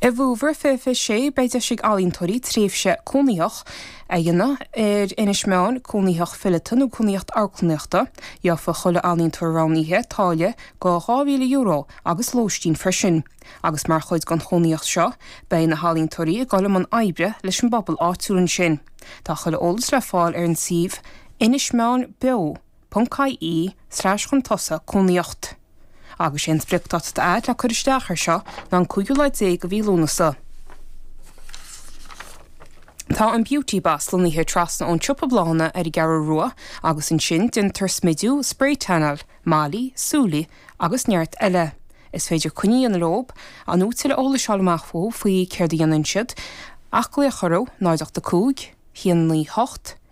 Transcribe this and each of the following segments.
I bhFómhar 2026, beidh deis ag ealaíontóirí tréimhse chónaitheach a dhéanamh ar Inis Meáin, Cónaitheacht Fileata nó Cónaitheacht Amharclannaíochta. Gheobhaidh chuile ealaíontóir roghnaithe táille go €2,000 agus lóistín freisin, agus mar chuid den chónaitheacht seo, beidh na healaíontóirí ag dul i mbun oibre leis an bpobal áitiúil ansin. Tá chuile eolas le fáil ar an suíomh Inis Meáin Beo. ponc, IE, slais chun tosaigh, cónaitheacht. Agus sé an spriocdáta atá le cur isteach air seo ná an cúigiú lá déag de mhí Lúnasa. Tá an Beauty Boss lonnaithe trasna ón siopa bláthanna ar an gCeathrú Rua agus ansin déantar smidiú, sprae tannáil, malaí, súli agus neart eile. Is féidir coinne a dhéanamh leob nó tuilleadh eolais a fháil amach fúthu faoi céard a dhéanann siad ach glaoch orthu, 0 8 5, 1 9 8,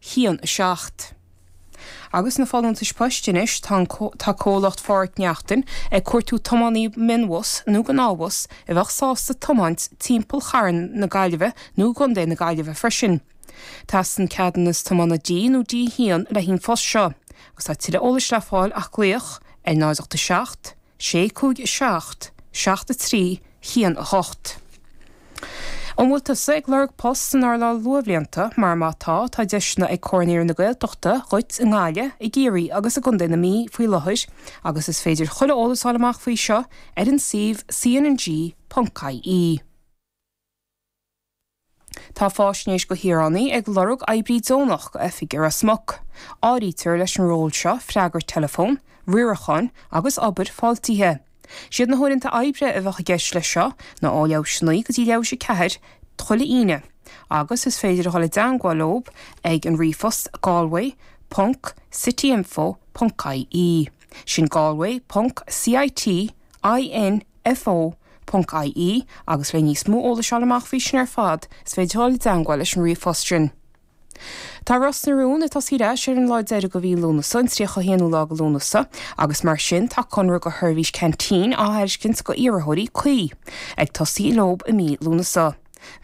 1 7. Agus na folúntais poist anois, tá an tá comhlacht Pháraic Neachtain ag cuartú tiománaí mionbhus nó gnáthbhus a bheadh sásta tiomáint timpeall Chathair na Gaillimhe nó i gContae na Gaillimhe freisin. Teastaíonn ceadúnas tiomána D nó D1 le haghaidh an phost seo agus tá tuilleadh eolais le fáil ach glaoch ar 0 8 7 6 5 7 7 3 1 8 An bhfuil tusa ag lorg poist san earnáil luathbhlianta? Mar má tá, tá deiseanna ag Comhar Naíonraí na Gaeltachta dhuit i nGaillimh, i gCiarraí agus i gContae na Mí faoi láthair agus is féidir chuile eolas fháil amach faoi seo ar an suíomh cnng.ie. Tá Fáisnéis go Shaoránaí ag lorg oibrí deonach go oifig i Ros Muc. Áirítear leis an ról seo freagairt teileafón, riarachán agus obair fáiltithe. Siad na huaireanta oibre a bheadh i gceist leis seo ná ó leath théis a naoi go dtí leath théis a ceathair chuile Aoine agus is féidir a dhul i dteangmháil leob ag an ríomhphost galway ponc cityinfo ponc ie. Sin galway ponc city, IN, FO, ie, agus le níos mó eolais fháil amach faoi sin ar fad, is féidir dul i dteangmháil leis an ríomhphost sin. Tá Ros na Rún ag tosaí ar ais ar an lá deiridh de mhí Lúnasa, an 31ú lá de Lúnasa, agus mar sin tá conradh do sheirbhís Canteen á thairiscint go iarrthóirí cuí, ag tosaí leob i mí Lúnasa.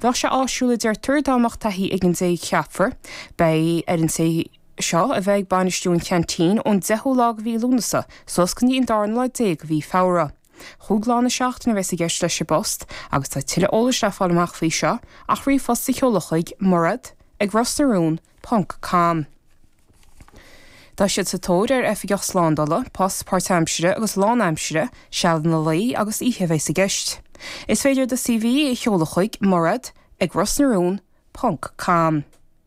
Bheadh sé áisiúil, deirtear, dá mbeadh taithí ag an té a cheapfar. Beidh ar an té seo a bheith ag bainistiú an Chanteen ón 10ú lá de mhí Lúnasa suas go dtí an darna lá déag de mhí Feabhra. Chúig lá na seachtaine a bheas i gceist leis an bpost agus tá tuilleadh eolais le fáil amach faoi seo ach ríomhphost a sheoladh chuig, Mairéad ag ros na rún ponc com. Tá siad sa tóir ar oifigeach slándala, post páirtaimsire agus lánaimsire, sealanna lae agus oíche a bheas i gceist. Is féidir do CV a sheoladh chuig, Mairéad ag ros na rún ponc com.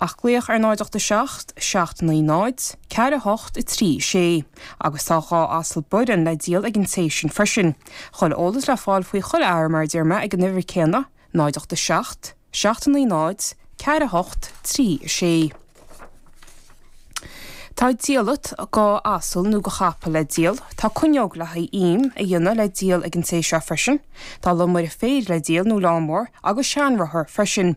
Ach glaoch ar 087 790 4836 agus tá dhá asal boireann le díol ag an té sin freisin. Chuile eolas le fáil faoi chuile shórt mar a deir mé ag an uimhir céanna, 087 790 4836. Tá diallait, do asal nó do chapall le díol. Tá cuinneog le haghaidh im a dhéanamh le díol ag an té seo freisin. Tá lomaire féir le díol nó lawnmower agus seanrothar freisin.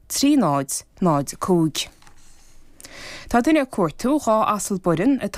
3005. Tá duine ag cuartú dhá asal boireann atá.